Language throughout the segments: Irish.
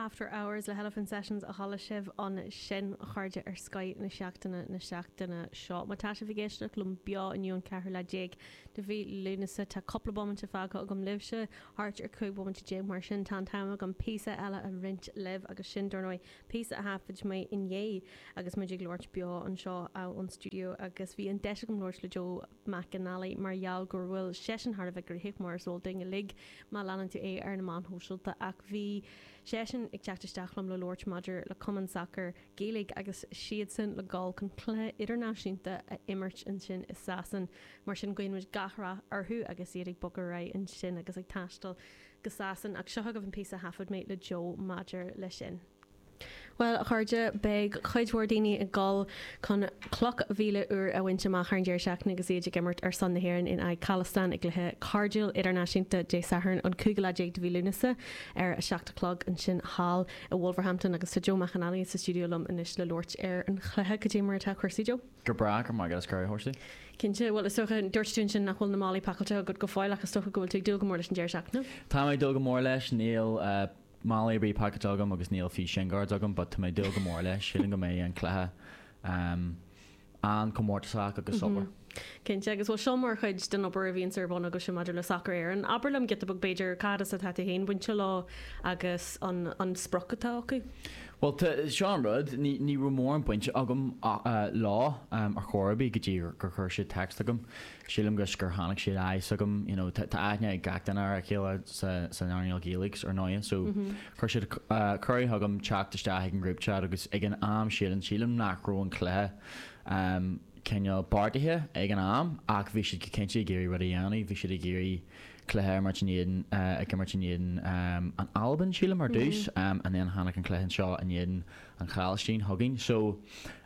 After Hours le hElephant Sessions a chuala sibh ansin, a chairde ar Scoth na seachtaine na seachtaine seo. Má tá sibh ag éisteacht liom beo inniu an ceathrú lá déag de mhí Lúnasa, tá cúpla bomaite fágtha agam libhse, thart ar 15 bomaite, mar sin tá an t-am agam píosa eile a roinnt libh agus sin, dar ndóigh, píosa a thaifead mé inné agus muid ag labhairt beo anseo ón stiúideo agus bhí an deis agam labhairt le Joe McAnally mar gheall go bhfuil seisean thar a bheith gníomhach, mar is eol dúinn uilig má leanann tú é ar na meáin shóisialta, ach bhí seisean ag teacht isteach liom le labhairt maidir le cumann sacair Gaeilge agus siadsan le gabháil chun cluiche idirnáisiúnta a imirt ansin i Sasain, mar sin guíonn muid gach rath orthu agus iad ag bogadh ar aghaidh ansin agus ag taisteal go Sasain, ach seo agaibh an píosa a thaifead mé le Joe maidir leis sin. Bhuel, a chairde, beidh cuid mhór daoine ag dul chun cloch mhíle úr a bhaint amach thar an deireadh seachtaine agus iad ag imirt ar son na hÉireann in aghaidh Chalastáin i gcluiche cairdiúil idirnáisiúnta Dé Sathairn an 15 lá de mhí Lúnasa ar a seacht a chlog ansin thall i Wolverhampton agus tá Joe McAnally sa stiúideo liom anois le labhairt ar an chluiche. Cad é mar atá cúrsaí, Joe? Go breá, go maith, agus Cara Horsley? Cinnte, bhuel, is dócha, dúirt tú ansin nach bhfuil na málaí pacáilte agat go fóill ach is dócha go bhfuil tú ag dúil go mór leis an deireadh seachtaine? Táim ag dúil go mór leis, níl. Málaí ar bith pacáilte agam agus níl fiú shin guards agam but tá mé ag dúil go mór leis, sílim go mbeidh an cluiche an-chomórtasach agus soiléir. Cinnte, agus bhuel seo mar chuid den obair a bhíonns ar bun agaibhse maidir le Sacar Éireann. Abair liom giota beag b'fhéidir cá as atá tú féin bainte leo agus an sprioc atá acu? Bhuel tá, seo an rud, ní raibh mórán bainte agam leo ar chor ar bith go dtí gur chuir siad téacs chugam. Sílim gur gur tháinig siad aye so chugam you know tá aithne ag gach duine ar a chéile sa sa earnáil Ghaeilge so ar ndóighe so chuir siad cuireadh chugam teacht isteach ag an group chat agus ag an am sílim sílim nach raibh an cluiche ehm cineál beartaithe ag an am ach bhí siad go cinnte ag iarraidh rud a dhéanamh bhí siad ag iarraidh cluiche a imirt in éadan eh ag imirt in éadan ehm an Albain sílim ar dtús ehm and then tháinig an cluiche anseo in éadan An Chalastáin chugainn. So,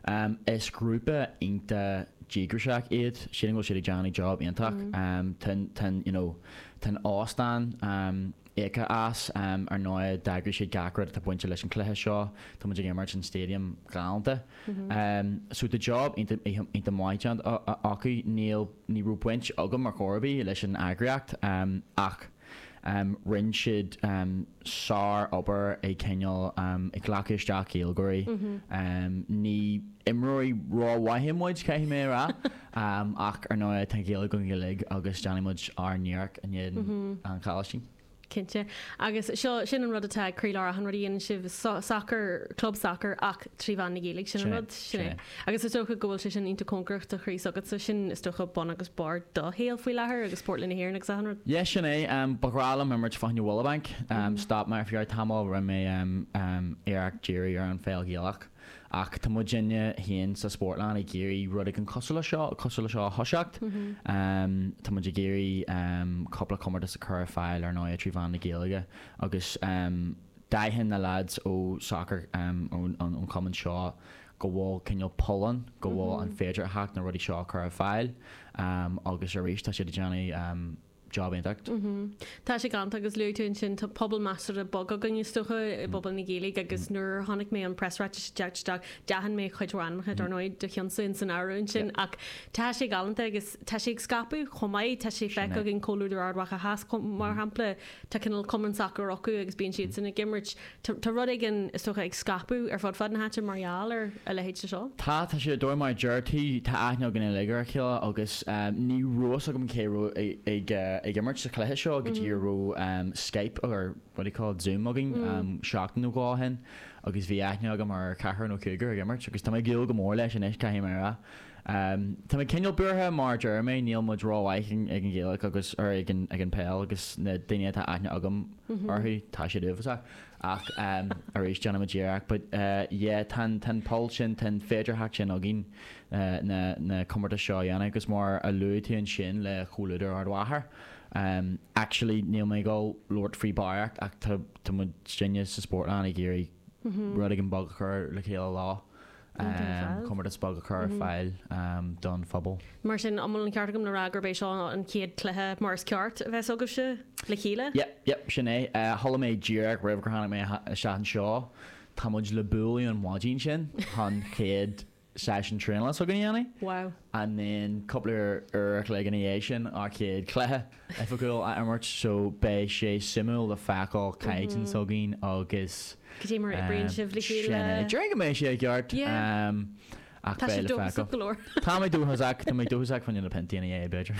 um, is grúpa iontach díograiseach iad. Sílim go bhfuil siad ag déanamh job iontach. Um, tá'n, tá'n, you know, tá'n óstán, um, íoctha as. Um, ar ndóigh, d'eagraigh siad gach rud atá bainte leis an chluiche seo. Tá muid ag imirt san stadium ghalánta. Um, so tá job iontach, iontach maith déanta acu. Níl, ní raibh baint agam ar chor ar bith leis an eagraíocht, um, ach. Rinn siad sár obair ag cineál ag glacadh isteach Gaeilgeoirí. Ní imreoirí ró mhaithe muid, caithfidh mé a rá, ach ar ndóigh tá Gaeilge againn uilig agus déanfaidh muid ár n-iarracht in éadan an Chalastáin. Cinnte. Agus seo, sin an rud atá ag croílár achan rud a dhéanann sibh, sacar, club sacair ach trí mheán na Gaeilge, sin an rud, sin é. Agus is dócha go bhfuil sé sin iontach cóngarach do chroí s'agatsa, sin is dócha bun agus barr do shaoil faoi láthair agus Spórtlann na hÉireann agus achan rud. Yeah, sin é. Ba ghnách liom imirt fá choinne Willowbank. Stop mé ar feadh tamall, rinne mé iarracht díriú ar an pheil Ghaelach ach tá muidinne féin sa Spórtlann ag iarraidh rud éigin cosúil le seo, cosúil le seo a thoiseacht. Tá muid ag iarraidh cúpla comórtas a chur ar fáil ar ndóigh trí mheán na Gaeilge agus d'aithin na leaids ó sacar ón chumann seo go bhfuil cineál pull ann, go bhfuil an féidearthacht na rudaí seo a chur ar fáil agus arís tá siad ag déanamh job iontach. Tá sé galánta agus luaigh tú ansin tá pobal measartha beag againn is dócha i bpobal na Gaeilge agus nuair a chonaic mé an preasráiteas ag teacht isteach, d'aithin mé cuid mhaith ainmneacha dar ndóigh do cheannsa in san áireamh ansin ach tá sé galánta agus tá sé ag scaipeadh chomh maith, tá sé feicthe againn Comhluadar Ard Mhacha Theas mar shampla, tá cineál cumann sacair acu agus bíonn siadsan ag imirt Tá rud éigin, is dócha, ag scaipeadh ar fud fad na háite mar gheall ar a leithéid de seo. Tá, tá siad ar dóigh mar a deir tú, tá aithne againn uilig ar a chéile agus ní raibh fhios agam cé a raibh ag imirt sa chluiche seo go dtí go raibh Skype or what do you call it, Zoom againn seachtain nó dhó ó shin agus bhí aithne agam ar ceathrar nó cúigear ag imirt agus tá mé ag dúil go mór leis anois, caithfidh mé a rá. Tá mé cineál buartha, mar a deir mé, níl muid rómhaith ag an Gaelach agus, er, ag an pheil agus na daoine atá aithne agam orthu, tá siad iontach. Ach, arís, déanfaidh muid iarracht. But, yeah, tá an, tá an poll sin, tá an féidearthacht sin againn na, na comórtais seo a dhéanamh agus mar a luaigh tú ansin le Comhluadar Ard Mhacha, actually, níl mé ag dul labhairt faoi barraíocht ach tá, tá muid, sinne sa Spórtlann ag iarraidh rud éigin beag a chur le chéile leo. comórtas beag a chur ar fáil don phobal. Mar sin, an bhfuil an ceart agam le rá gurb é seo an chéad chluiche mar is ceart a bheas agaibhse le chéile? Yep, yep, sin é. Chuala mé díreach roimh gur tháinig mé isteach anseo, tá muid le bualadh an mhaidin sin, chun an chéad seisiún traenála s'againne a dhéanamh. And then cúpla uair a chloig ina dhiaidh sin, ár chéad chluiche. Oifigiúil a imirt so beidh sé suimiúil le feiceáil caighdeán s'againn agus Cad é mar a oibríonn sibh le chéile? sin é. Déarfainn go mbeidh sé i gceart ach beidh le feiceáil. go leor. Tá mé dóchasach, tá mé dóchasach faoi na piontaí ina dhiaidh, b'fhéidir.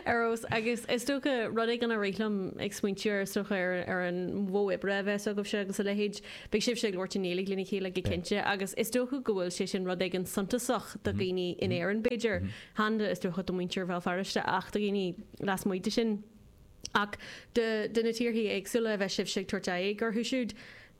Ar fheabhas, agus is dócha rud éigin a rith liom ag smaointiú ar is dócha ar ar an mhodh oibre a bheas agaibhse agus a leithéid, beidh sibhse ag labhairt i nGaeilge lena chéile go cinnte agus is dócha go bhfuil sé sin rud éigin suntasach do dhaoine in Éirinn b'fhéidir, chan do, is dócha, do mhuintir Bhéal Feirste ach do dhaoine lasmuigh de sin ach do na tíorthaí éagsúla a bheadh sibhse ag tabhairt aghaidh orthu siúd,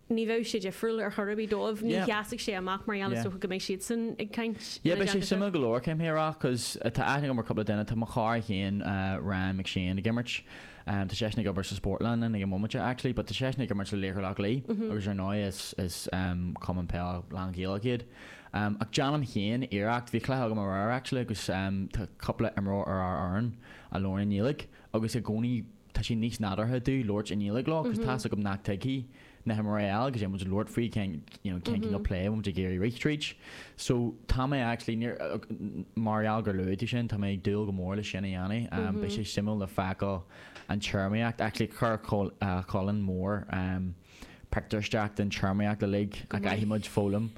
ní bheadh sé difriúil ar chor ar bith dóibh, ní sheasfadh sé amach mar gheall is dócha go mbeidh siadsan ag caint ina dteanga. Beidh sé suimiúil go leor céim thíreach cos tá aithne agam ar cúpla duine, tá mo chara féin, Ryan McShane, ag imirt. Tá seisean ag obair sa Spórtlann ag an móimint actually but tá seisean ag imirt le Laochra Loch Lao agus ar ndóigh is is cumann peil lán Ghaelach iad. Ach déanaim féin iarracht, bhí cluiche agam aréir actually agus tá cúpla imreoir ar ár fhoireann a labhraíonn i nGaeilge agus i gcónaí tá sé níos nádúrtha domh labhairt i nGaeilge leo cause tá's agam nach tuigfidh na himreoirí eile agus muid ag labhairt faoi cén you know cén cineál play a bhfuil muid ag iarraidh rith tríd. So tá mé actually mar gheall gur luaigh tú sin tá mé ag dúil go mór le sin a dhéanamh. Beidh sé suimiúil le feiceáil an téarmaíocht actually chuir Colin mór pictiúr isteach den téarmaíocht uilig a gcaithfidh muid foghlaim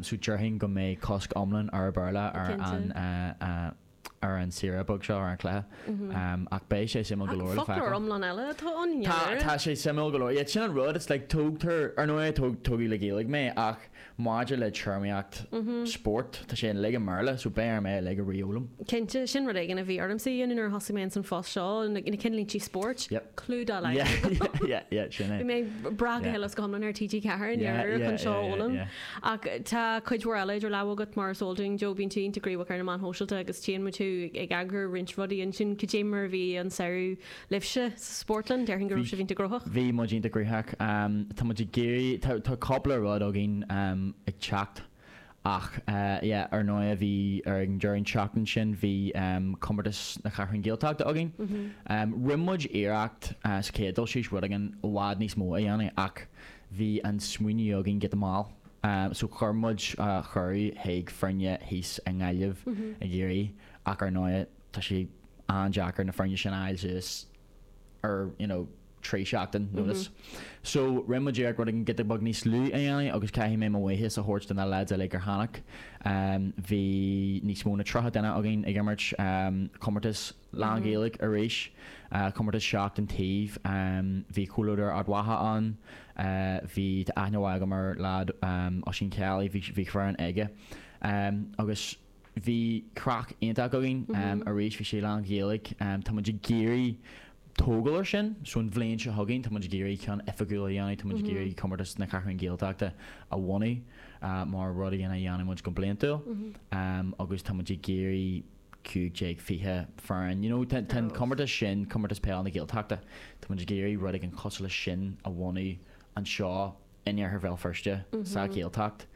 so déarfainn go mbeidh cosc iomlán ar an Béarla ar an ar an saoire beag seo, ar an chluiche, ach beidh sé suimiúil go leor le feiceáil. Foclóir iomlán eile atá ann i ndáiríre. Tá sé suimiúil go leor. Sin an rud, is like tógtar, ar ndóigh tógadh le Gaeilge mé ach maidir le téarmaíocht spóirt, tá sé uilig i mBéarla so beidh orm é uilig a re-fhoghlaim. Cinnte, sin rud éigin a bhí ormsa a dhéanamh nuair a thosaigh mé ins an phost seo, na cinnlíntí spóirt, clue dá laghad agam. Bhí mé ag brath go huile is go hiomlán ar TG4 i ndáiríre chun seo a fhoghlaim. Ach tá cuid mhór eile idir lámha agat, mar is eol dúinn. Joe, bíonn tú iontach gníomhach ar na meáin shóisialta agus tchíonn muid thú ag eagrú roinnt rudaí ansin. Cad é mar a bhí an samhradh libhse sa Spórtlann? Déarfainn go raibh sibh iontach gnóthach. Bhí muid iontach gnóthach. Tá muid ag iarraidh, tá, tá cúpla rud againn ag teacht ach yeah, ar ndóighe bhí, ar an deireadh an tseachtain sin bhí comórtas na Ceathrún Gaeltachta againn. Rinne muid iarracht sa chéad dul síos rud éigin i bhfad níos mó a dhéanamh ach Bhí an smaoineamh againn giota mall so chuir muid cuireadh chuig foirne thíos i nGaillimh i gCiarraí ach ar ndóigh tá sé an-deacair na foirne sin a fháil suas ar you know trí sheachtain notice. So rinne muid iarracht rud éigin giota beag níos lú a dhéanamh agus caithfidh mé mo bhuíochas a thabhairt do na lads uilig ar tháinig. Bhí níos mó na 30 duine againn ag imirt comórtas. lánGhaeilge arís, comórtas seacht an taobh, bhí comhluadar Ard Mhacha ann, bhí, tá aithne mhaith agam ar leaid, Oisín Kelly, bhí, bhí foireann aige agus bhí craic iontach againn. Arís, bhí sé lánGhaeilge. Tá muid ag iarraidh tógáil air sin, so an bhliain seo chugainn, tá muid ag iarraidh ceann oifigiúil a dhéanamh, tá muid ag iarraidh Comórtas na Ceathrún Gaeltachta a bhunú mar rud a dhéanamh, a dhéanfaidh muid go bliantúil agus tá muid ag iarraidh, 15, 20 foireann. You know, tá an comórtas sin, Comórtas Peile na Gaeltachta, tá muid ag iarraidh rud éigin cosúil leis sin a bhunú anseo in iarthar Bhéal Feirste, sa Ghaeltacht.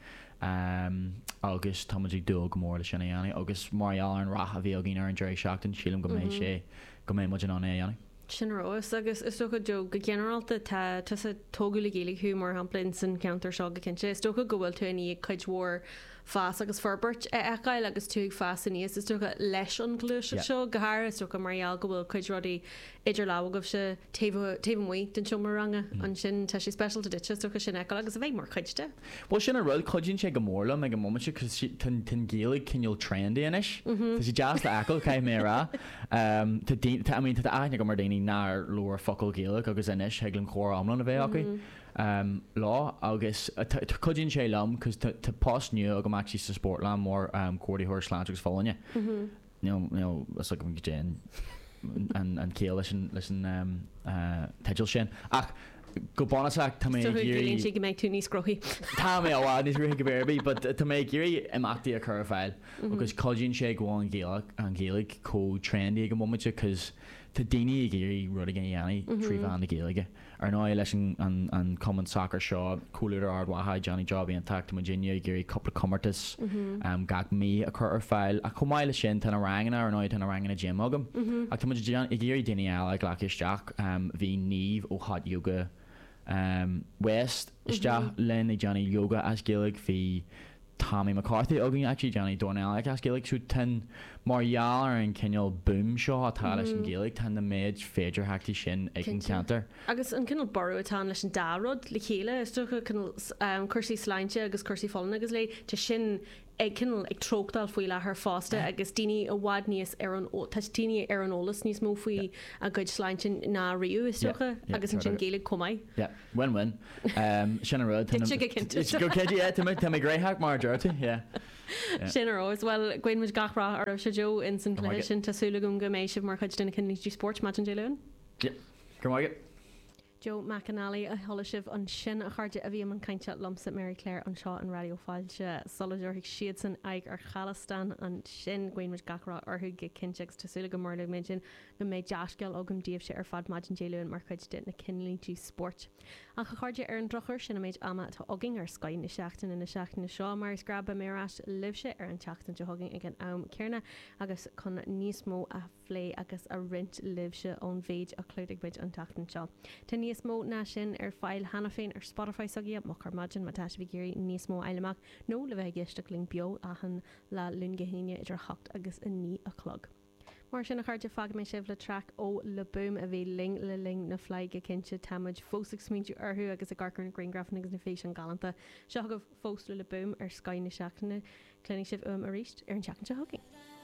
Agus tá muid ag dúil go mór leis sin a dhéanamh agus mar gheall ar an rath a bhí againn ar an deireadh seachtaine, sílim go mbeidh sé, go mbeidh muid in ann é a dhéanamh. Sin ar fheabhas agus is dócha Joe, go ginearálta tá, tusa, tógadh le Gaeilge thú mar shampla in san cheantar seo go cinnte, is dócha go bhfuil tú i ndiaidh cuid mhór fás agus forbairt a fheiceáil agus tú ag fás aníos, is dócha, leis an ghluaiseacht seo. Go háirithe, is dócha, mar gheall go bhfuil cuid rudaí idir lámha agaibhse taobh, taobh amuigh den seomra ranga. Ansin, tá sé speisialta duitse, is dócha, sin a fheiceáil agus a bheith mar chuid de. Bhuel, sin an rud, cuidíonn sé go mór liom ag an móimint cos tá an Ghaeilge cineál trendy anois. Tá sé deas le fheiceáil, caithfidh mé a rá. Tá daoine, tá, I mean, tá aithne agam ar dhaoine nár labhair focal Gaeilge agus anois thig linn comhrá iomlán a bheith aici. lá agus cuidíonn sé liom cos tá post nua agam actually sa Spórtlann mar comhordaitheoir sláinte agus folláine níl fhios agam go dtéann aon chiall leis an leis an teideal sin ach go bunúsach tá mé ag iarraidh Tuigimse go mbeidh tú níos gnóthaí. Tá mé i bhfad níos gnóthaí go bhféadfadh but tá mé ag iarraidh imeachtaí a chur ar fáil agus cuidíonn sé go bhfuil an Ghaeilge an Ghaeilge chomh trendy ag an móimint cos tá daoine ag iarraidh rudaí a dhéanamh trí mheán na Gaeilge. Ar ndóigh, leis an cumann sacair seo, Comhluadar Ard Mhacha, déanann job iontach. Tá muidinne ag iarraidh cúpla comórtas gach mí a chur ar fáil. Ach chomh maith leis sin, tá na ranganna, ar ndóigh tá na ranganna gym agam. Ach tá muid ag iarraidh daoine eile a ghlacadh isteach. Bhí Niamh ó Hot Yoga West isteach linn ag déanamh yoga as Gaeilge. Bhí. Tommy McCarthy againn ag déanamh, dornálaíocht as Gaeilge. So tá an, mar gheall ar an cineál boom seo atá leis an Ghaeilge, tá an méid féidearthachtaí sin ag an cheantar. Agus an cineál borradh atá ann leis an dá rud le chéile, is dócha, cineál cúrsaí sláinte agus cúrsaí folláine agus léi, tá sin ag cineál ag treochtáil faoi láthair fosta agus daoine i bhfad níos ar an, tá daoine ar an eolas níos mó faoi a gcuid sláinte ná riamh, is dócha, agus ansin Gaeilge chomh maith. Bhain, bhain. Sin an rud. Thit sé go cinnte. Go cinnte, yeah. Tá mé, tá mé gnóthach mar a deir tú, yeah. Sin an rud. Bhuel, guíonn muid gach rath oraibhse, Joe, ins an chluiche sin. Tá súil agam go mbeidh sibh mar chuid de na cinnlínte spóirt maidin Dé Luain. Yep. Go raibh maith agat. Joe McAnally a chuala sibh ansin, a chairde, a bhí i mbun cainte liomsa, Mary Claire, anseo ar Raidió Fáilte sula dtabharfaidh siadsan aghaidh ar Chalastáin ansin. Guíonn muid gach rath orthu go cinnte agus tá súil agam, mar a luaigh mé, go mbeidh dea-scéal agam daoibhse ar fad maidin Dé Luain mar chuid de na cinnlínte spóirt. Ach, a chairde, ar an drochuair, sin an méid ama atá againn ar Scoth na Seachtaine na seachtaine seo. Mar is gnách, beidh mé ar ais libhse ar an tseachtain seo chugainn ag an am céanna agus chun níos mó a phlé agus a roinnt libhse ón mhéid a chlúdaigh muid an tseachtain seo. Tá níos mó ná sin ar fáil cheana féin ar Spotify s'againne, Moch ar Maidin, má tá sibh ag iarraidh níos mó a fháil amach nó le bheith ag éisteacht linn beo achan lá Luan go hAoine idir 8 agus 9 a chlog. Mar sin a chairde, fágfaidh mé sibh le traic ó Le Boom a bhí linn le linn na Fleidhe go cinnte. Tá muid fós ag smaointiú orthu agus ag amharc ar na griangrafanna agus na físeáin galánta. Seo chugaibh fosta Le Boom ar Scoth na seachtaine. Cluinfidh sibh uaim arís ar an tseachtain seo chugainn.